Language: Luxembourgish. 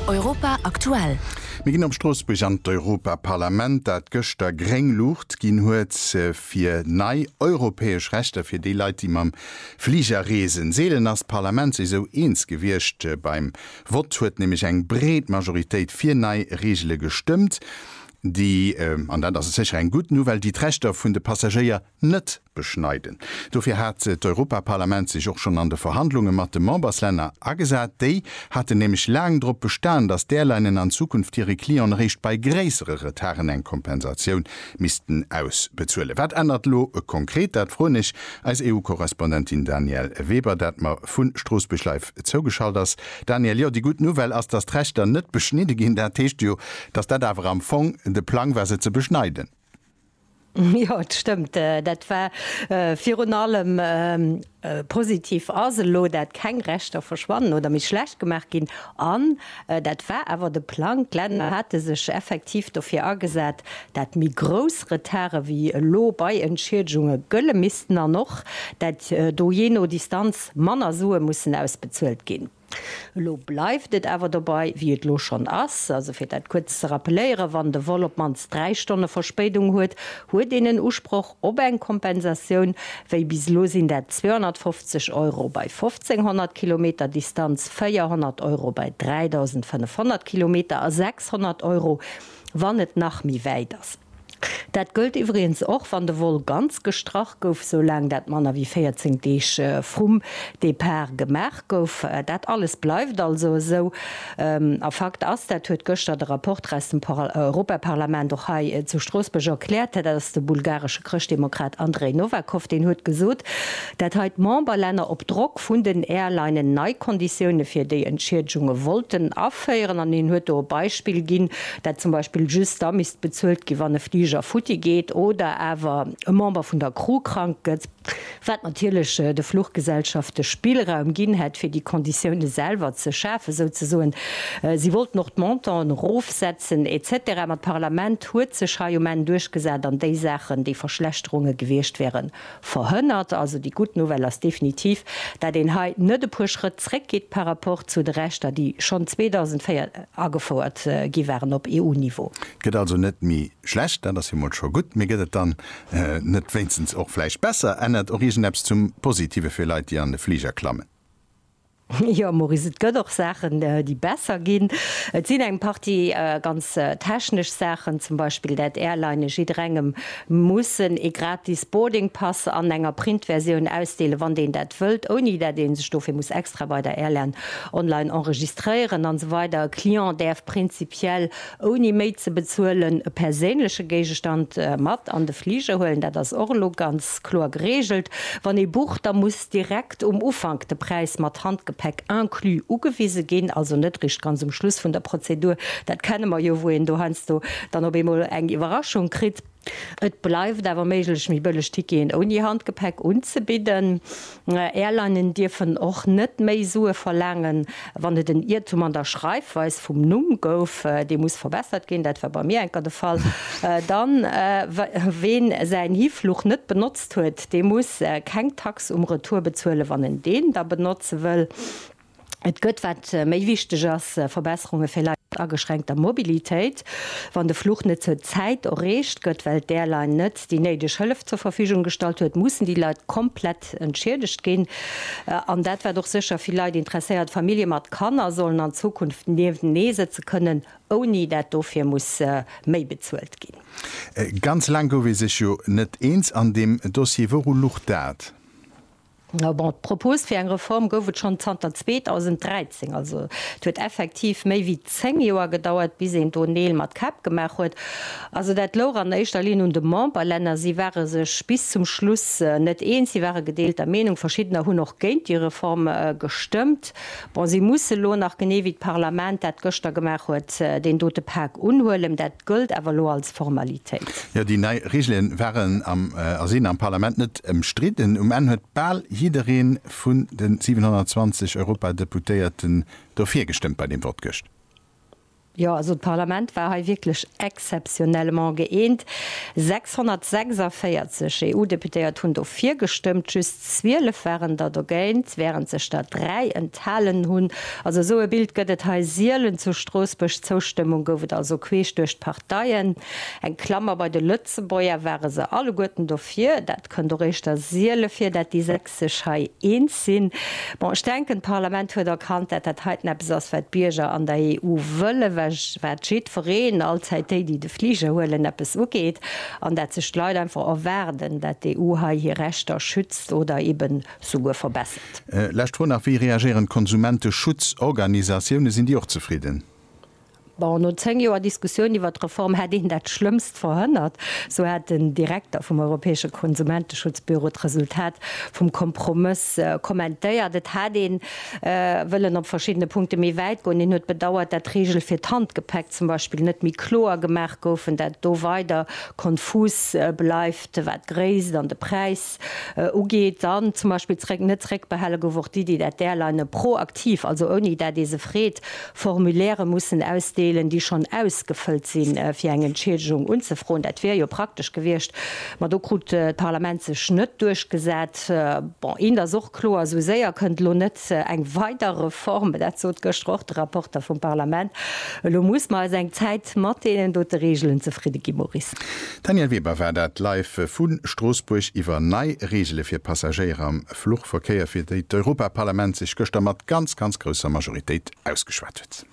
Europa aktuell. Mir ginn op Stroossbuerg an d'Europaparlament, dat gëschter gréng Luucht ginn huet fir nei europäesch Rechter fir déi Leit, déi mam Fliger reesen. Seelen ass d'Parlament sech esou eens gewiescht. Beim Vott huet nämlech eng breet Majoritéit fir nei Reegele gestëmmt, déi, an dat ass sécher eng gutt Nouvelle, déi d'Rechter vun de Passagéier net beschneiden. Dofir hat d'Europaparlament sech och schonn an de Verhandlunge mat de Memberslänner agesat. Déi haten nämlech laang drop bestan, datt d'Airlinen an Zukunft hire Clienten eréischt bei gréissere Retarden eng Kompensatioun missten ausbezuelen. Wat ännert elo konkret? Dat froen ech eis EU-Korrespondentin Danièle Weber, dat mer vu Stroossbuerg live zougeschalt ass. Danièle, jo, déi gutt Nouvelle ass, datt d'Rechter net beschnidde ginn. Dat heescht jo, datt dat awer am Fong de Plang war, se ze beschneiden. Jo, et stëmmt, dat war virun allem positiv. Ass elo dat keng Rechter verschwannen oder méi schlecht gemaach ginn? An dat war awer de Plang, d'Länner hate sech effektiv dofir agesat, dat méi grouss Retarde wéi elo bei Entschiedegunge gëlle missten an och, dat do jee no Distanz manner Sue mussen ausbezuelt ginn. Elo bleift et awer dobei, wéi et elo schonn ass. Also fir dat kuerz ze rappeléieren, Wann de Vol op d'mannst dräi Stonne Verspéidung huet, huet een en Usproch op eng Kompensatioun. Wéi bis elo sinn dat 250 Euro bei 1.500 Kilometer Distanz, 400 Euro bei 3.500 Kilometer a 600 Euro, wann et nach méi wäit ass. Dat gëllt iwwregens och, wann de Vol ganz gestrach gouf, soulaang dat manner wéi 14 Deeg vrum Depart gemaach gouf. Dat alles bleift also esou. A Fakt ass, dat huet gëschter de Rapporter aus dem Europaparlament och hei zu Stroossbuerg erkläert, dat ass de bulgaresche Chrëschtdemokrat Andrej Novakov, deen huet gesot, dat hei d'Memberlänner op Drock vun den Airlinen nei Konditioune fir déi Entschiedegunge wollten aféieren. An hien huet do e Beispill ginn, dat zum Beispill just da misst bezuelt ginn, wann e Fliger futti geet oder awer e Member vun der Crew krank gëtt, wat natierlech de Fluchgesellschafte Spillraum ginn hätt, fir déi Konditioune selwer ze schafen, souzesoen. Si wollten och d'Montanten erofsetzen, etc. Ma d'Parlament huet sech hei um Enn duerchgesat an déi Saachen, déi Verschlechterunge gewiescht wäeren, Verhënnert. Also déi gutt Nouvelle ass definitiv, dat een hei net e puer Schrëtt zréck geet par rapport zu de Rechter, déi schonn 2004 agefouert gi waren op EU-Niveau. Et gëtt also net méi schlecht, dat ass jo mol scho gutt. Mee gëtt et dann net wéinstens och vläicht besser? Ännert och iergend eppes zum Positive fir Leit, déi an de Fliger klammen? Jo Maurice, et gëtt och Saachen déi besser ginn. Et sinn eng Partie ganz technesch Saachen, zum Beispill dat Airlinen jidderengem mussen ee gratis Boarding Pass an enger Printversioun ausdeelen, wann deen dat wëllt, ouni dat ee sech dofir muss extra bei der Airline online enregistréieren an esou weider E Client däerf prinzipiell ouni méi ze bezuelen e perséinleche Géigestand mat an de Fliger huelen, dat ass och elo ganz kloer geregelt. Wann ee bucht, da muss. direkt um Ufank de Präis mat Handgepäck inclus ugewise ginn, also net eréischt ganz um Schluss vun der Prozedur, dat kenne mer jo, wou een do heiansdo dann op eemol eng Iwwerraschung kritt. Et bleift awer méiglech, méi bëlleg Ticketen ouni Handgepäck unzebidden. Airlinen dierfen och net méi Sue verlaangen, wann et en Iertum an der Schreifweis vum Numm gouf, dee muss verbessert ginn, dat war bei mir enker de Fall, dann, ween säin Hifluch net benotzt, huet, dee muss keng Tax um Retour bezuelen, wann en deen da benotze wëll. Et gëtt, wat méi wichteg ass, Verbesserunge fir Leit mat ageschränkter Mobilitéit, wann de Fluch net zur Zäit erreecht gëtt, well d'Airline net déi néideg Hëllef zur Verfügung gestallt huet, mussen déi Leit komplett entschiedegt ginn. An dat wat och sécher vill Leit interesséiert, Famillje mat Kanner sollen an Zukunft nieftenee sëtze kënnen, Ouni dat dofir muss méi bezuelt ginn. Ganz laang gouf ee sech jo net eens an deem Dossier. Wouru luch dat? Bon, d'Propos fir eng Reform gouf et schonn zanter 2013. Also et huet effektiv méi wéi zéng Joer gedauert, bis een do Neel mat Käpp gemaach huet. Also dat louch an éischter Linn un de Memberlänner. Si ware sech bis zum Schluss net eens, si ware gedeelter Meenung. Verschiddener hunn och géint déi Reform gestëmmt. Bon, si musse elo nach, genee wéi d'Parlament dat gëschter gemaach huet, deen dote Pak unhuelen. Dat gëllt awer elo als Formalitéit. Jo, déi nei Regele waren a sinn am Parlament net ëmstridden. Um Enn huet bal jidderee vun de 720 Europadeputéierten dofir gestëmmt bei deem Vott gëscht. Jo, also d'Parlament war hei wierklech exceptionnellement gëeent. 646 EU-Deputéiert hunn dofir gestëmmt, just 12 waren der dogéint, wärend sech der dräi enthalen hunn. Also esou e Bild gëtt et hei sielen zu Stroossbuerg. D'Zoustëmmung gouf et also queesch duerch d'Parteien. Eng Klammer, bei de Lëtzebuerger ware se alleguerten dofir. Dat kënnt och éischter siele vir, dat déi sech hei eens sinn. Bon, ech denken, d'Parlament huet erkannt, dat dat heiten eppes ass, wat d'Bierger an der EU wëllen, wat jiddwereen, allzäit déi, déi de Fliger huelen, eppes ugeet, an dat sech d'Leit einfach erwaarden, dat d'EU hei hir Rechter schützt oder eben souguer verbessert. Lescht Fro nach, Wéi reagéieren d'Konsumenteschutzorganisatioune? Sinn déi och zefridden? Bon, no 10 Joer Diskussioun iwwert d'Reform hätt een dat Schlëmmst verhënnert, sou hat den Direkter vum europäesche Konsumenteschutzbüro d'Resultat vum Kompromëss kommentéiert. Et hat ee wëllen op verschiddene Punkte méi wäit goen. Hien huet bedauert, dat d'Reegele fir d'Handgepäck zum Beispill net méi kloer gemaach goufen, dat do weider konfus bleift, wat d'Gréisst an de Präis Text ugeet, dann zum Beispill zréck, net zréckbehale gouf och d'Iddi, dat d'Airlinene proaktiv, also ouni dat ee se freet, Formulairë mussen ausdeelen, déi schonn ausgefëllt sinn, fir eng Entschiedegung unzefroen. Dat wier jo praktesch gewiescht, ma do krut d'Parlament sech net duerchgesat. Bon, eent ass och kloer, Esou séier kënnt elo net Fakt, eng weider Reform, dat sot gëschter och de Rapporter vum Parlament, elo muss mer eis eng Zäit mat deenen dote Regeln zefridde ginn. Maurice. Danièle Weber, War dat Live vu Stroossbuerg iwwer nei Regele fir Passagéier am Fluchverkéier, fir déi d'Europaparlament sech gëschter mat ganz, ganz grousser Majoritéit ausgeschwat huet?